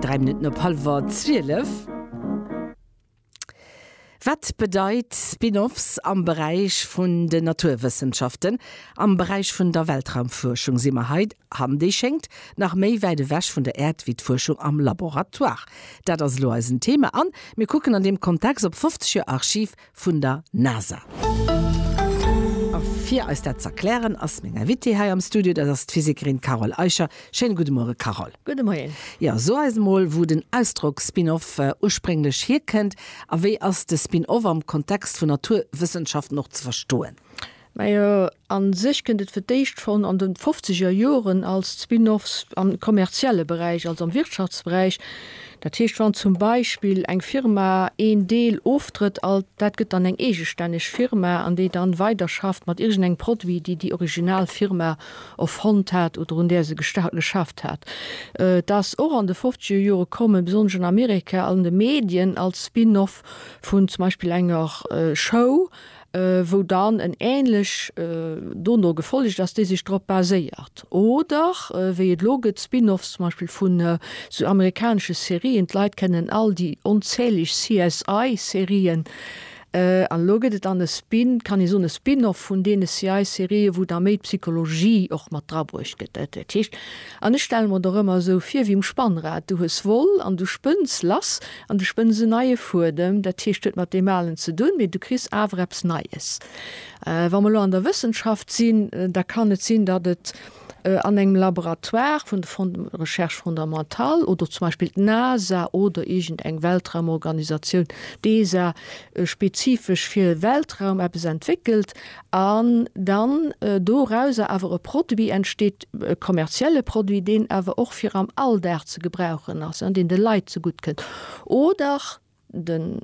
Dräi Minutten op hallwer zwielef. Wat bedeit Spin-offs am Beräich vun den Naturwëssenschaften? Am Beräich vun der Weltraumfuerschung si mer hei, an déi schéngt nach méi wäit ewech vun der Äerd wéi d'Fuerschung am Laboratoire. Dat ass elo eisen Thema an mir kucken an deem Kontext op 50 Joer Archiv vun der NASA. A fir eis dat z'erklären, ass meng Invitée hei am Studio, dat ass d'Physikerin Carole Eicher. Schéine gudde Muere, Carole. Gudde Moien. Jo, so eis emol, wou den Ausdrock Spin-off ursprénglech hierkënnt a wéi ass de Spin-off am Kontext vun Naturwëssenschaften och ze verstoen? Majo, A sech kënnt et fir d'éischt schonn an de fofzeger Joren als Spin-offs am kommerzielle Beräich, also am Wirtschaftsberäich. Dat heescht, wann zum Beispill eng Firma een Deel oftrëtt, al dat gëtt dann eng eegestänneg Firma an déi dann weiderschafft mat iergendengem Produit, déi déi original Firma erfonnt hat oder un där se gesta geschafft hat. Et ass och an de fofzeger Jore kommen, besonnesch an Amerika, an de Medien als Spin-off vun zum Beispill enger Show, wou dann en ähnlech dono gefollegt ass, déi sech drop baséiert, oder wéi et elo gëtt Spin-offs zum Beispill vun esou amerikanesche Serien, d'Leit kennen all déi onzähleg CSI-Serien, an elo gëtt et dann e Spin, kann ee soen, e Spin-off vun deene CSI-Serien, wou da méi d'Psychologie och mat drabruecht gëtt. Dat heescht. An ech stelle mer et och ëmmer esou vir wéi um Spannrad, du hues Woll an du spënns lass an du spënns en neie Fuedem, dat heescht huet mat deem alen ze dunn, mee du kriss awer eppes Neies. Wa mer elo an der Wëssenschaft sinn, da kann et sinn, datt et an engem Laboratoire vun de Fonds de recherche fondamentale oder zum Beispill d'NASA oder iergend eng Weltraumorganisatioun, d'ESA, spezifesch fir Weltraum eppes entwéckelt, an dann dorauser awer e Produit entsteet, e kommerzielle Produit, deen awer och fir am Alldag ze gebrauchen ass, deen de Leit zegutt kënnt, oder den,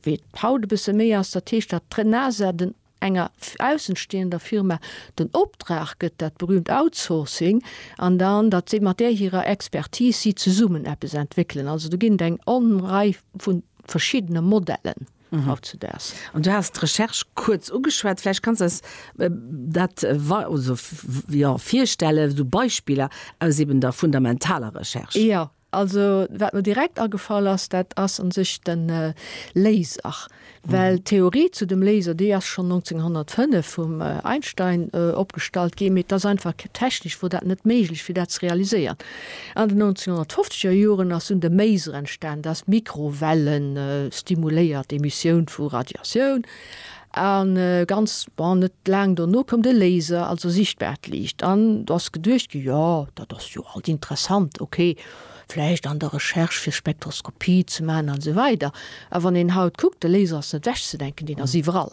wéi et haut e bësse méi ass, dat heescht, datt d'ENASA den enger aussenstehender Firma den Optrag gëtt, dat berühmt Outsourcing, an dann, datt si mat där hirer Expertise, si zesummen eppes entwéckelen. Also do ginn et eng Onrei vu verschiddene Modellen. haut zu daags. An du has d'Recherche kuerz ugeschwat. Vläicht kanns eis dat virstellen, esou Beispiller aus eben der fundamentaler Recherche? Jo. Also wat mer direkt agefall ass, dat ass un sech de Laser. Well d'Theorie zu dem Laser, déi ass schonn 1905 vum Einstein opgestallt ginn, mee et ass einfach technesch wor dat net méiglech, fir dat ze realiséieren. An den 1950 er Joren ass un de Maser entstan, dass Mikrowellen stimuléiert Emissioun vu Radiatioun, a ganz bon net laang dono koum de Laser, also sichtbaart Liicht, an do ass geduecht gi jo dat ass jo alt interessant, ok vläicht an der Recherche fir Spektroskopie ze man an esou weider. A wann een haut kuckt, de Laser ass net wegzedenken, deen ass iwwerall.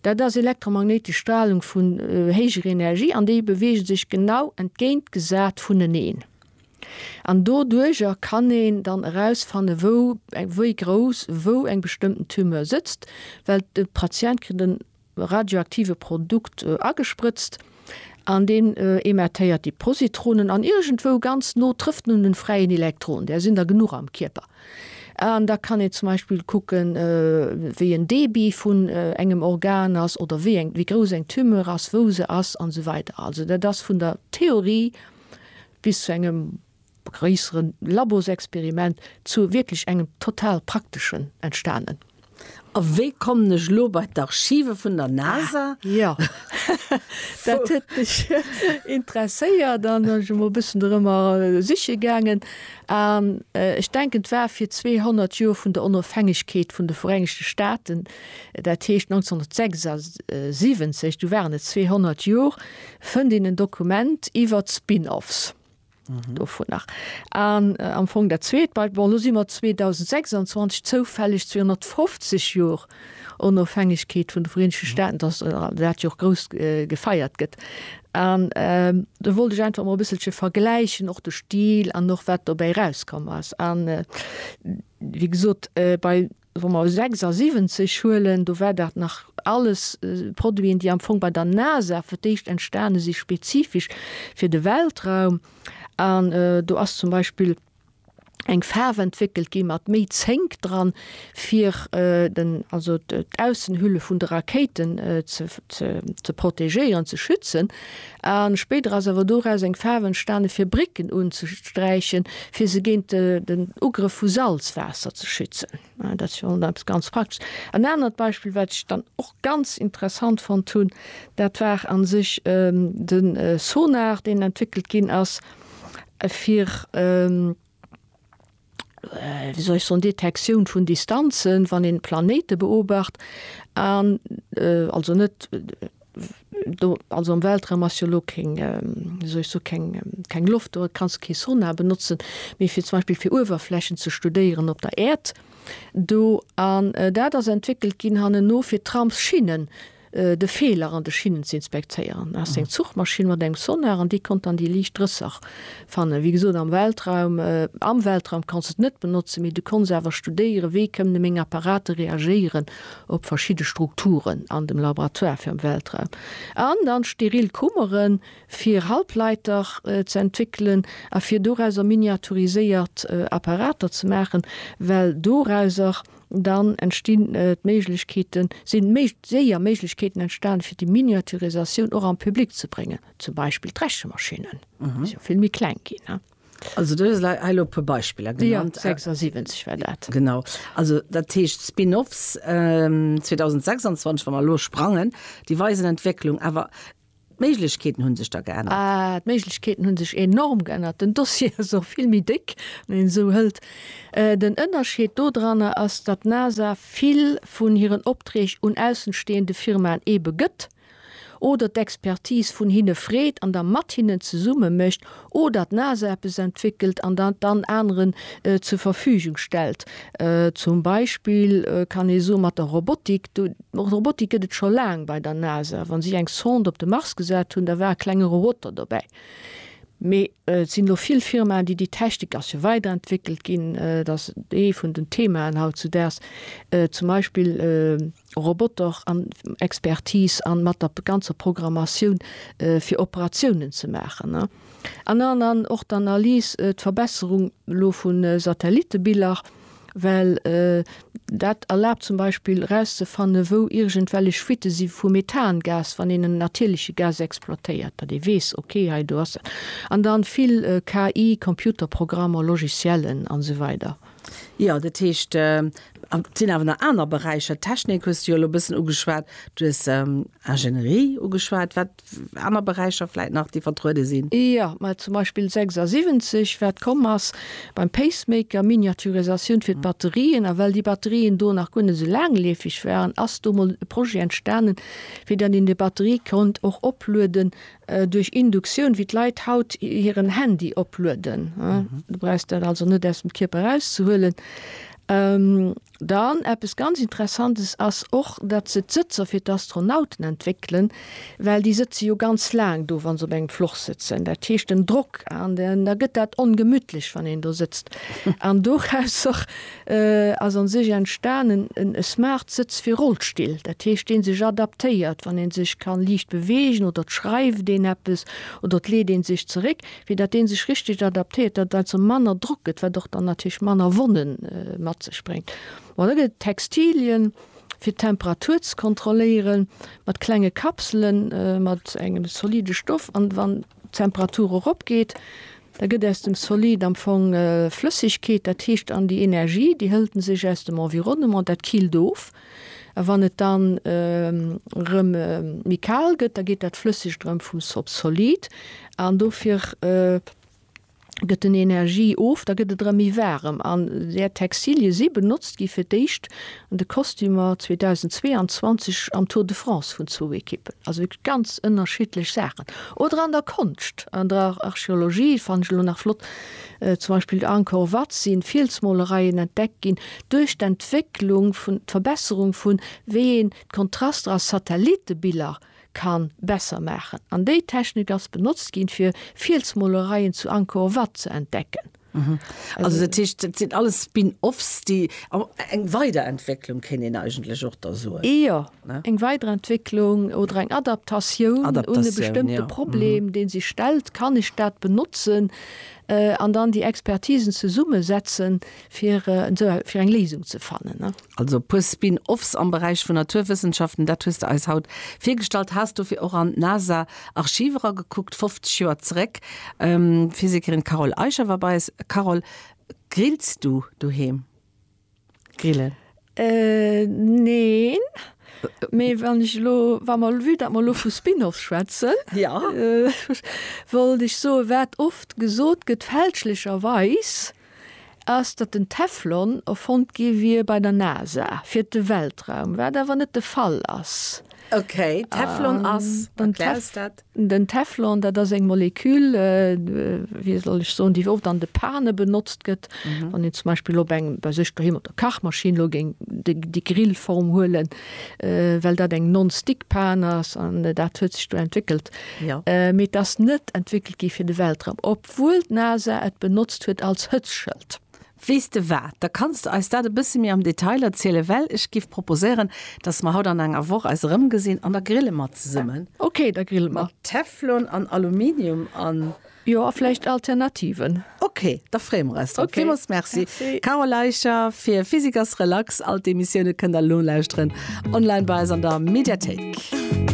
Dat ass elektromagnéitesch Stralung vun héijer Energie an déi beweege sech genau entgéintgesat vuneneen. An doduerjer kann een dann erausfanne wou, wéi grouss, wou eng bestëmmten Tumeur sëtzt, well de Patient kritt e radioaktive Produkt agesprëtzt. An deen emettéiert déi Positronen an iergendwou ganz no trëfft en un den fräien Elektron, där sinn der genuch am Kierper. An da kann een zum Beispill kucken, wéi en Débit vun engem Organ ass oder wéi eng, wéi grouss eng Tumeur ass, wou se ass an esou weider. Also dat ass vun der Theorie bis zu engem gréisseren Labosexperiment zu wierklech engem total prakteschen entstanen. A wéi kommen ech elo bei d'Archive vun der NASA? Ah jo, dat huet mech interesséiert an ech sinn emol e bëssen dorëmmer siche gaangen. An ech denken, et war fir d'zweehonnert Joer vun der Onofhängegkeet vun de Vereenegte Staaten, dat heescht 1976, do waren et zweehonnert Joer, fënnt een en Dokument iwwert d'Spin-offs. Dovun nach. An am Fong dat Zweet, bei, bon, elo si mer 2026, zoufälleg 250 Jor Onofhängegkeet vun de Vereenegte Staaten, dass dat jo och grouss gefeiert gëtt. An do wollt ech einfach emol e bësselche vergläichen, och de Stil an och wat dobäi erauskomm ass. An wéi gesot, bei. Wa mer 76 huelen, do war dat nach alles Produiten, déi am Fong bei der NASA fir d'éischt entstane si spezifesch fir de Weltraum. An do ass zum Beispill eng Faarf entwéckelt gi mat méi Zénk dran, fir den, also d'Aussenhülle vun de Rakéiten ze protegéieren, ze schützen. A spéider ass awer doraus eng Faarf entstanen, fir Brécken unzesträichen, fir se géint den Ugrëff vu Salzwaasser ze schützen. Dat ass jo eppes ganz Praktesches. En anert Beispill, wat ech dann och ganz interessant fonnt hunn, dat war a sech de Sonar, deen entwéckelt ginn ass, fir wéi soll ech soen, Detektioun vun Distanzen, wann een d'Planéite beobacht an, also net do, also am Weltraum ass jo elo keng, wéi soll ech soen, keng, keng Loft do, et kanns kee Sonar benotzen, mee fir zum Beispill fir Uewerflächen ze studéieren op der Äerd do an dat ass entwéckelt ginn hannenno fir Tramsschinnen de Feeler an de Schinnen ze inspektéieren. Ass eng Zuchmaschinn mat engem Sonar an déi konnt dann déi liicht Rësser fannen. Wéi gesot am Weltraum, am Weltraum kanns de et net benotzen, mee du konns awer studéieren, wéi kënnen meng Apparate reagéieren op verschidde Strukturen an dem Laboratoire fir am Weltraum. An dann steril Kummere fir Halbleiter ze entwéckelen a fir dorauser miniaturiséiert Apparater ze maachen, well dorauser Dann entstinn d'Méiglechkeeten, sinn méi séier Méiglechkeeten entstan fir déi Miniaturisatioun och am Public ze bréngen, zum Beispill d'Rechemaschinen, déi si jo vill méi kleng ginn. Also du hues hei elo e puer Beispiller genannt. Jo, 76 war dat. Genau. Also dat heescht Spin-offs 2026, wa mer elo sprangen, déi weisen Entwécklung. Awer D'Méiglechkeeten hunn sech da geännert? Ah, d'Méiglechkeeten hunn sech enorm geännert. Den Dossier ass och vill méi déck, wann een esou hëlt. Den Ënnerscheed do dranner ass, datt d'NASA vill vun hiren Opträg un aussenstehende Firmaen ebe gëtt oder d'Expertise vun hinne freet an da mat hinnen zesumme mécht, Oder d'NASA eppes entwéckelt an dat dann aneren zur Verfügung stellt. Zum Beispill kann ee soen, mat der Robotik, Robotik gëtt et scho laang bei der NASA. Wa si eng Sonde op de Mars gesat hunn, da war e klenge Roboter dobäi. Mee et sinn elo vill Firmaen, déi déi Technik, ass jo weiderentwéckelt ginn, dat ass ee vun den Themaen haut zu daags, zum Beispill, Roboter an Expertise an mat der ganzer Programmatioun fir Operatiounen ze maachen an an an och d'Analyse, d'Verbesserung elo vu Satellitebiller, well dat erlaabt zum Beispill erauszefanne wou iergendwellech Fuitte si vu Methangas, wann een en natierleche Gas exploitéiert, datt ee weess, ok hei do ass dat, an da vill KI, Computerprogrammer, Logiciellen an esou weider. Jo, dat heescht, et sinn awer nach aner Beräicher. D'Technik hues de jo elo e bëssen ugeschwat. Du hues Ingénierie ugeschwat. Wat aner Beräicher vläit nach, déi vertruede sinn? Jo, mä zum Beispill 76, wat komm ass beim Pacemaker, Miniaturisatioun fir d'Batterien. A well déi Batterien do nach guer net esou laangleefeg waren, ass do emol e Projet entstanen, fir datt een déi Batterie konnt och oplueden Duerch Induktioun, wéi d'Leit haut hiren Handy oplueden, du brauchs dat also net aus dem Kierper erauszehuelen. Dann eppes ganz Interessantes ass och, datt se d'Sëtzer fir d'Astronauten entwéckelen, well déi sëtze jo ganz laang do, wa se op engem Floch sëtzen. Dat heescht, den Drock, da gëtt dat ongemütlech, wann een do sëtzt. An dorausser ass an sech entstanen e smart Sëtz fir Rollstill, dat heescht deen sech adaptéiert wann een sech kann liicht beweegen oder et schreift een eppes oder et leet een sech zeréck, fir dat deen sech richteg adaptéiert, dat also manner Drock gëtt, wat och dann natierlech manner Wonnen mat sech bréngt. Bon da gëtt et Textilien fir d'Temperatur ze kontrolléieren mat klenge Kapselen mat engem solide Stoff an wann. d'Temperatur erop geet, da gëtt aus dem Solid am Fong Flëssegkeet, dat heescht an déi Energie, déi hëlt en sech aus dem Environnement, dat killt of. A wann et dann erëm méi kal gëtt, da geet dat Flëssegt erëm vum Solid an dofir. gëtt den Energie of, da gëtt et erëm méi waarem. An där Textilien si benotzt gi fir d'éischt an de Kostümer 2022 am Tour de France vun zwou Ekippen. Also wierklech ganz ënnerschiddlech Saachen. Oder an der Konscht, an der Archeologie, fannen ech elo nach flott, zum Beispill zu Angkor Wat si Fielsmolereien entdeckt ginn. Duerch d'Entwécklung vun, d'Verbesserung vun, wéi een d'Kontraster a Satellitebiller ka besser maachen an déi Technik ass benotzt ginn fir Fielsmolereien zu Angkor Wat ze entdecken. Also dat heescht dat sinn alles Spin-offs déi, eng Weiderentwécklung kéint een eigentlech och da soen? Jo, eng Weiderentwécklung oder eng Adaptatioun un e bestëmmte Problem dee sech stellt, kann ech dat benotzen an dann déi Expertisen zesummesetzen fir fir eng Léisung ze fannen. Also e puer Spin-offs am Beräich vun Naturwëssenschaften, dat hues de eis haut virgestallt. Has dofir och an d'NASA-Archiv eragekuckt, 50 Joer zeréck. D'Physikerin Carole Eicher war bei eis. Carole, grillst du doheem? Grillen? Neen, mee wann ech elo, wa mer, vue datt mer elo vu Spin-offs schwätzen, wollt ech soen, wat oft gesot gëtt, fälschlecherweis, ass, datt den Teflon erfonnt gi wier bei der NASA fir de Weltraum, wat awer net de Fall ass. Ok, Teflon ass, erklär eis dat. Den Teflon, dat ass eng Molekül, wéi soll ech soen, déi oft an de Pane benotzt gëtt. Wann een zum Beispill op eng, bei sech doheem op der Kachmaschinn elo géing déi Grillform huelen, well dat eng non-stick Pane ass, an dat huet sech do entwéckelt. Mee et ass net entwéckelt gi fir de Weltraum. wuel d'NASA et benotzt huet als Hëtzschëld. Weess de wat, da kanns de eis dat e bësse méi am Detail erzielen, well ech giff proposéieren, dass mer haut an enger Woch eis erëm gesinn an da grille mer zesummen. Ok, da grille mer. Mat Teflon an Aluminium an. Jo, a vläicht Alternativen. Ok, da freeë mer eis drop. Villmools Merci, Carole Eicher, fir Physiker's Relax. All d'Emissioune kënnt der nolauschteren online bei eis an der Mediathéik.